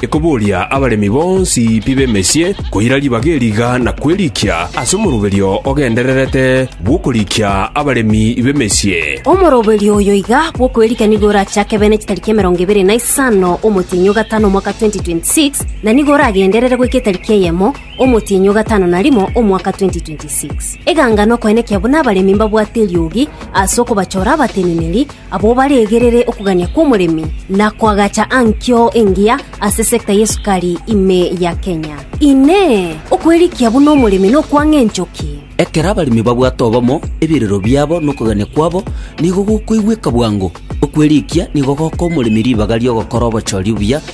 Ekoboria abaremi bonsi pi b'emesie koira ribaga eriga na kwerikia ase omoroberio ogendererete bw'okorikia abaremi b'emesie. Omoroberio oyo iga bw'okwerikia nigo orachake bene chitariki emerongo ebere na isano omotienyi o gatano omwaka 2026, na nigo oragenderere goika etariki eyemo omotienyi o gatano na rimo omwaka 2026. Eganga nokoenekia buna abaremi mbabwate eriogi ase okobachora abateneneri, Abwo baregerere okogania kw'omoremi na koagacha ankio engiya ase sector y'esukari ime ya Kenya. Inee! Okwerikia buna omoremi nokwang'a enchoki? Ekero abaremi babwate obomo, ebirero biabo na okogania kwabo nigo gokoigweka bwango. Okwerikia nigo gokoa omoremi ribaga ri'ogokora obochori obuya,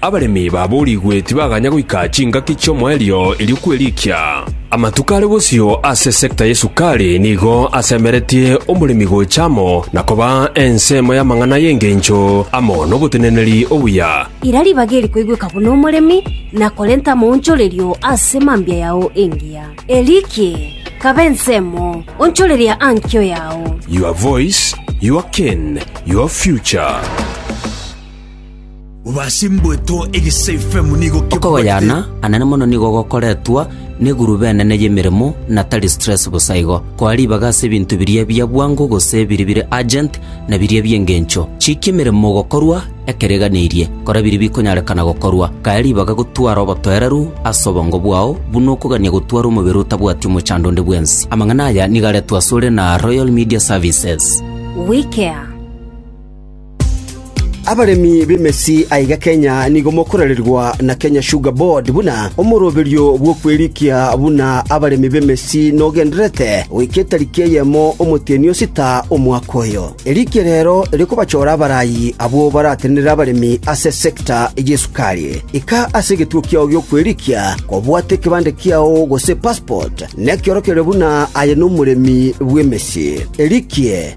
Abaremi baboorigwe tibaganya goika chingaki chi'omoerio erio kwerikia. Amatuko are bosio ase esecta y'esukari nigo asemeretie omoremi gocha amo na koba ensemo y'amang'ana y'engencho amo noboteneneri obuya. Ira ribaga eri koigweka buna omoremi, na korenta amaonchorerio ase mambia yao engiya. Erikie, kaba ensemo, onchoreria ankio yao. Your voice, your cane, your future. Obasimbwetwe egese ifemu nigo Okogoyana anene mono nigo gokoretwa neguruba enene y'emeremo na tari stress bosa igo. Koa ribaga ase ebinto biria bia bwango gose biri bire urgent na biria bi'engencho. Chikia emeremo gokorwa ekeriganirie. Kora biria bikonyarekana gokorwa. Kaya ribaga gotwara obotoereru ase obongo bwao buna okogania gotwara omobere otabwati omochando onde bwensi. Amang'ana aya nigo aretwe asore na Royal Media Services. WeCare. Abaremi b'emesi aiga Kenya nigo mokorererwa na Kenya Sugar Board buna omoroberio bw'okwerikia buna abaremi b'emesi nogendererete goika etariki eyemo omotienyi o sita omwaka oyo. Erikia rero rikobachora abarayi abwo baratenenere abaremi ase sector y'esukari. Ika ase egetuo kiao gi'okwerikia kobwate ekebande kiao gose passport nekiorokererio buna aye nomoremi bw'emesi. Erikie